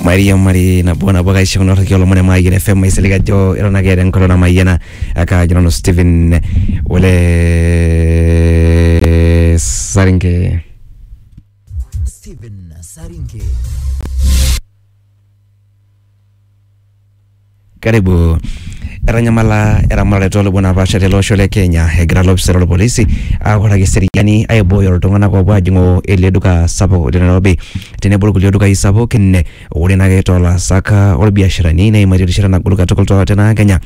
mairiamari nabo nabo kaisho kuna rriki olomon emayian fm aisilig ajo eton ake eeta enkolong namayiana akajo nanu Stephen ole Saringe Steven Saringe. Karibu. Etanyamala eramatare tolubon napaasha tele osho le Kenya egira lopisani lorpolisi autaki eseriani aibooyo iltung'anak opuo ajing'oo ele duka sapuk te Nairobi, tenebo irkulie dukai sapukin. Ore naake tolaasak lorbiasharani, neimaitie erishata nagol katukul te na Kenya.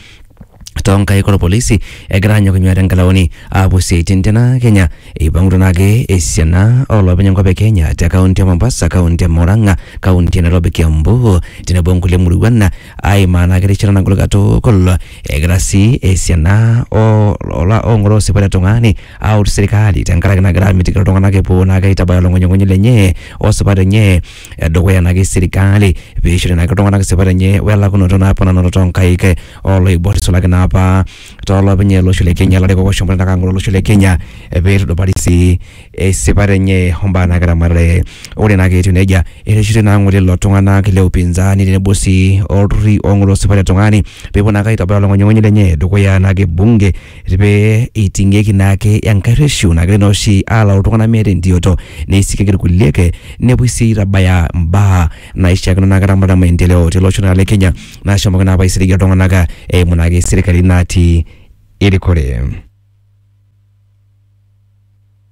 toonkaik olpolisi egira anyok inyuaa tenkalaoni aapuo siaitin tena Kenya. Eipang'utua naake esiana oolopeny enkop e Kenya te kaunti e Mombasa, kaunti e Murang'a, kaunti e Nairobi, Kiambu tenebo onkulie muruan aimaa naake erishata nagol katukul egira sii esiana oo oong'oroo esipata e tung'ani aut serkali tenkaraki nagira amitiki iltung'anak epuo naake aitabaya olong'unying'unyi lenye o sipat enye edukuya nake sirkali peishori nake iltung'anak sipat enye welakunoto naapa nanoto tonkaik eh, oloibor isulaki naapa tolopeny olosho le kenya larikok oshomoita nake ang'oro olosho le kenya eh, peitudupari sii esipat enye ombaa nake ramatare ore nake etiu nejia ereshitoi naa ng'ole lelo tung'anak le upinzani tenebo sii olturruri ong'oroo sipat etung'ani pepuo nake aitobaya olong'unyung'unyi lenye dukuya nake bunge Eti pee eiting'ieki naake enkae rreshu nagira naa oshi alau iltung'anak meeta entioto neisikieki irkulie ake nepuoi sii aitabaya imbaa naishiakino naa keramata maendeleo tele osho naa le Kenya nashomoki naa apa aisiligie iltung'anak eimu naake serkali natii erikore.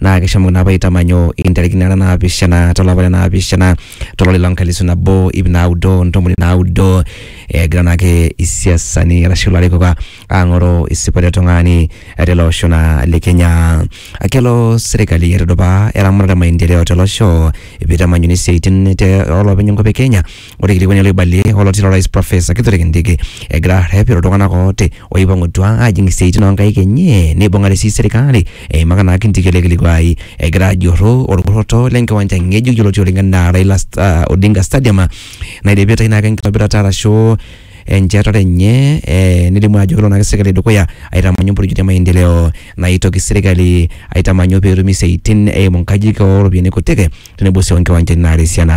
naa kishomoki naa apa aitamanyu intarikini nara naapishana tolapa le naapishana tolari loo nkalisu nabo ip naudo ntomoni naudo egira naake isiasani arashu ilarikok a- aang'oru isipat e tung'ani tele osho naa le Kenya. Kelo serkali aitudupaa eramatare e maendeleo tele osho piitamanyuni isiaitin te oolopeny enkop e Kenya Ore ilikoni loibalie oloti lorais Profesa Kithure Kindiki egira arrep iltung'anak ooti oipang'utua ajing isiaitin onkaik enye neibung'are sii serikali eimaka naa Kindiki ele kilikuai egira ajurru orkurroto lenkiwanja ng'ejuk yioloti oleng enaa Raila Sta- Odinga Stadium naidipitae naake enkitobirata arashu enchetare enye eh, nelimu ajo kelo naake serkali dukuya aitamanyu mpurijit e maendeleo naitoki serkali aitamanyu peetumi isiaitin eimu nkajijik oropiyiani kutik tenebo sii onkiwanjani naata esiana.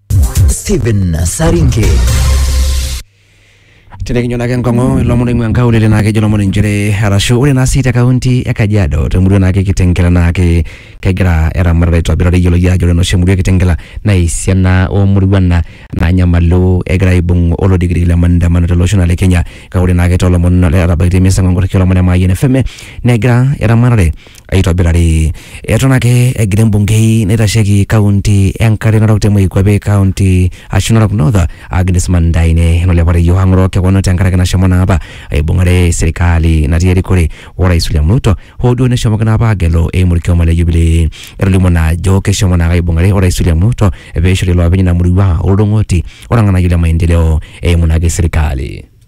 Stephen Saringe. Tenekinyo naake enkong'u ilomon oing'ua nkaulele naa kejo ilomon inchere arashu ore naa sii te kaunti e Kajiado te murua naake e Kitengela naake kegira eramatare aitobirari eyioloki ajo ore enoshi murua e Kitengela naa esiana oo muruan na- naanyamalu egira aibung olodikidiki le maandamano tele osho naa le Kenya. Kake ore naake too lomon ootabaikitia emisa enkong'u olomon e Mayian FM negira eramatare aitobirari. Eton ake egira embungei naitasheki kaunti enkare narok te Moikuape kaunti ashu Narok North Agnes Mandaine nolepareyioo ang'oroo kewon tenkaraki nashomo naa apa aibung'are serikali natii erikore orais William Ruto hoo duo neshomoki naa apa agelu eimu orkioma le Jubilee. Etolimuo naa ajo keshomo naake aibung'are orais William Ruto peishori iloopeny ina murua oldung'oti orng'anayio le maendeleo eimu naake serikali.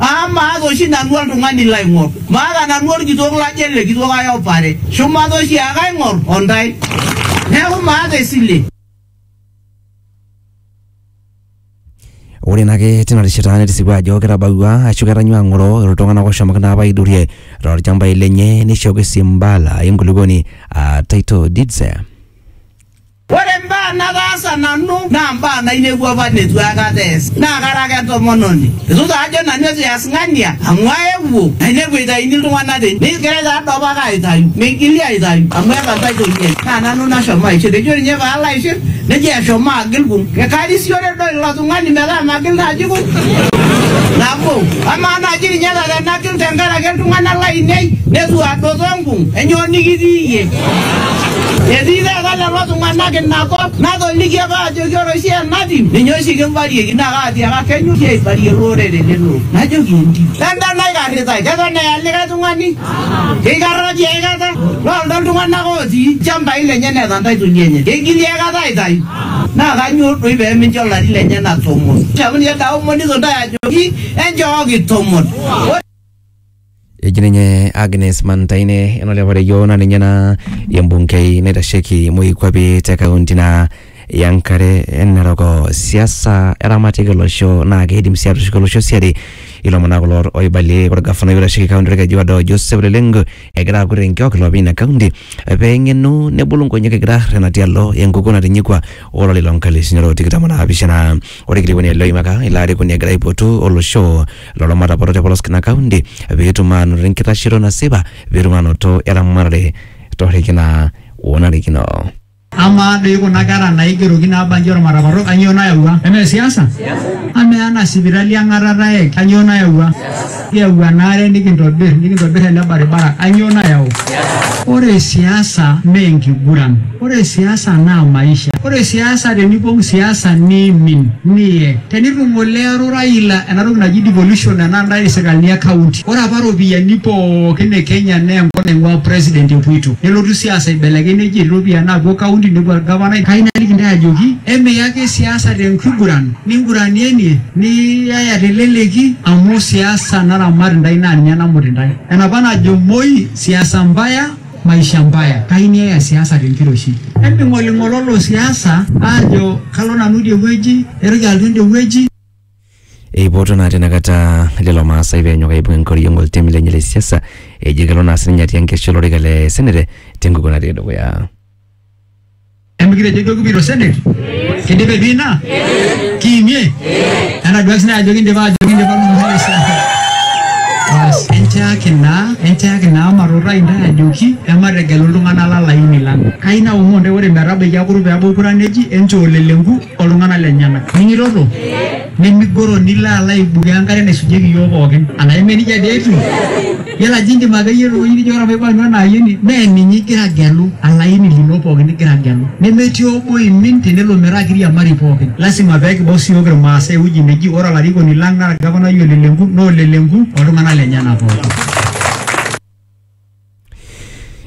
Aa maata oshi nanu oltung'ani laing'or, maata nanu olkitok lajo ele kitok ai opare, shumata oshi ake aing'or o ndai. Neaku maata esile. Ore naa ake tina rishata netisipua ajo ketabawua ashu ketanyua ng'oro iltung'anak oshomoki naa apa aidurie tolchambai lenye neishooki sii mbala enkulupuoni aa title deeds. Ore imbaa nataasa nanu naa imbaa nainepua apa neitu aikata eesi. Naa kara ake entomononi. Eitu taa ajo nanu eitu eas ng'ania amu aewuo nainepu eitayuni iltung'ana tene. Negirai taa doi opake aitayu. Meigili aitayu amu etantai Toyiai. Naa nanu nashomo aishir. Ejo ninye paalo aishir nejo eshomo agil kung. Karisiore doi ilo tung'ani metaa magil naaji kung nabo. Amaa naaji ninye ata tenagil tenkaraki iltung'ana laainei neitu adoto enkung. Enyoo nikitii iyie? Etii taata lelo tung'anak ina kop natoliki apa ajoki ore oshi enatiu ninye oshi kimbarieki naa kaatiaka kenyorri aibarie lorere lelo orere. Najoki entim. Lenda naikarritai keton eya likae tung'ani keikarra tiae kata loldo iltung'anak otii ilchambai lenye neeta intaitoli enye keigili ae kata aitayu naa kanyoo doi pee mincho ilari lenyena tomon. Neaku ninye Daudi ejoki enchooki tomon. eji ninye Agnes Mantaine enolepareyioo naa ninye naa embunkei naitasheki moikuape te kaunti naa Yankare Narok. Siasa eramatiki olosho naa keidim sii atushuki olosho siadi. Ilomon naa kulo oibalie olgafanai oitasheki kaunti olkeju odo Joseph Leleng egira aakur enkiok iloopeny ina kaunti pee eng'enu nebulu nkonyek egira arrerena tialo enkukuo natinyikua o lari loo nkalisuni are o tikitam o naapishana. Ore olkilikuai loimaka ilo arikoni egira aipotu olosho lolo mataporo te polos ina kaunti pee etum aanoto enkitashoto nasipa pee etum aanoto eramatare torreki naa onarikino. Amaa doi kuna kera naigeroki naabanji olmataparro kanyoo nayawua? Emee siasa? Amaa ena sipitali eng'atata e kanyoo nayawua? Kiyau enaare nikintobir nikintobir ele baribara kanyoo nayau? Ore siasa mee enkiguran. Ore siasa naa maisha. Ore siasa tenipong siasa niimin. Niye. Tenitu ngole ero Raila ena toki naji devolution ena ntae isikalini e county. Ore apa ropiyiani pookin e Kenya naa enkop naing'ua president epuoito. Nelotu siasa aibelekeny neji etii ropiyiani naapuo county nepuo olgavanai. Kayieu naliki intae ajoki emiya ake siasa te nkiguran ninguranienie niyaya te leleki amu siasa naramat intae naa ninye namut intae. Enapa najo Moi siasa mbaya. maisha mbaya kaini eya siasa tenkiroshi eming'oling'ololo siasa aajo kalo nanu idie wueji eitoki alotu ende wueji Eipoto naa tenakata lelo Maasai peenyok aibung enkoriong oltemi lenye le siasa ejo kelo naa sininye atii enkesha olorika le senete tenkukuo natii dukuya. Emikitejo kibiro senate? Kidipa ebiina? Kiimie? Enaduaki sinye ajo kindipa ajo kindipa olmumai esiai. Bas, enchaaki naa, enchaaki naa matuutaa intae ajoki emategelu iltung'anak lalaini lang. Kai naomon intae ore metabaiki akuru peebau kura neji enchoo leleku oltung'anak lenyena. Ning'itoto? Nemigoro nilo alo aibukoo enkare naisujieki iyiook pookin. Anaa eme nijia dii etiu? Yiolo ajo indim akeyie tewueji nijo ore maipang'u ena ayioni mee ninye igira agelu alaini lino pookin igira agelu. Nemetii obo oimin tenelo metaa kiriamari pookin. Lasima pee kibau siiyiok Ilmaasai ewueji neji ore olarikoni lang naa olgavanai o lelenku naa o lelenku oltung'anak lenyena pookin.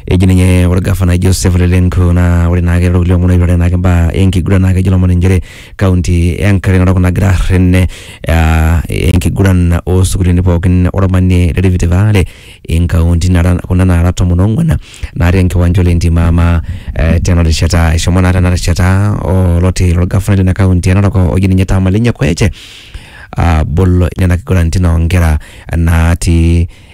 eji ninye ore gavana Joseph Lelenko naa ore naake lelo kulie omon oipirare naake imbaa enkiguran naa kejo ilomon inchere kaunti e Nkalema Narok nagira arren eh, enkiguran osukuluni pookin ormanie le Rift Valley inkauntini nara kuna nara tomon ong'uan natii enkiwanja ole Ntimama eh, tena rishata eshomo naa tena rishata oloti lorgafanai lina kaunti e Narok oji ninye Tamalinye Kwete abol nena kiguranitin onkera natii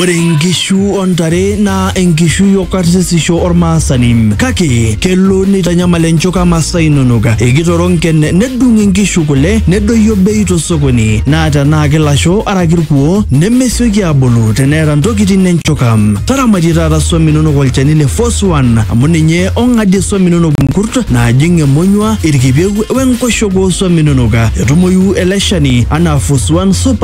Ore nkishu o ntare naa enkishui o karsisisho ormaasani kake kelo neitanyamal enchuka masaa inonok. Ekitoro nken nedung nkishu kule nedoyio bei tosokoni naa tenaa kilasho araki irkuo nemesioki aabulu teneeta ntokitin enchuka. Taramatie taata swam inonok olchani le Force One amu ninye ong'adie swam inonok nkurt naajing emonyua, irkipieu wenkoshoke oo swam inonok. Etumoyu ele shani anaa Force One Super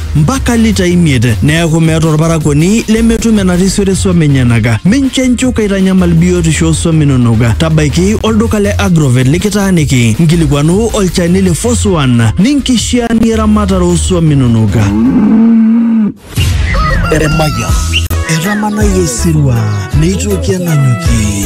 mpaka litai imiet, neaku meeta olparakuoni lemetum enarisioto e swam enyenaka. Mincho enchuka eitanyamal biotisho oo swam inonok. Tabaiki olduka le Agrovet likitaaniki, nkilikuanu olchani le Force One ninkishiaanie eramatare oo swam inonok. Emayian. Etamanayie osirua neitoki ananyuki.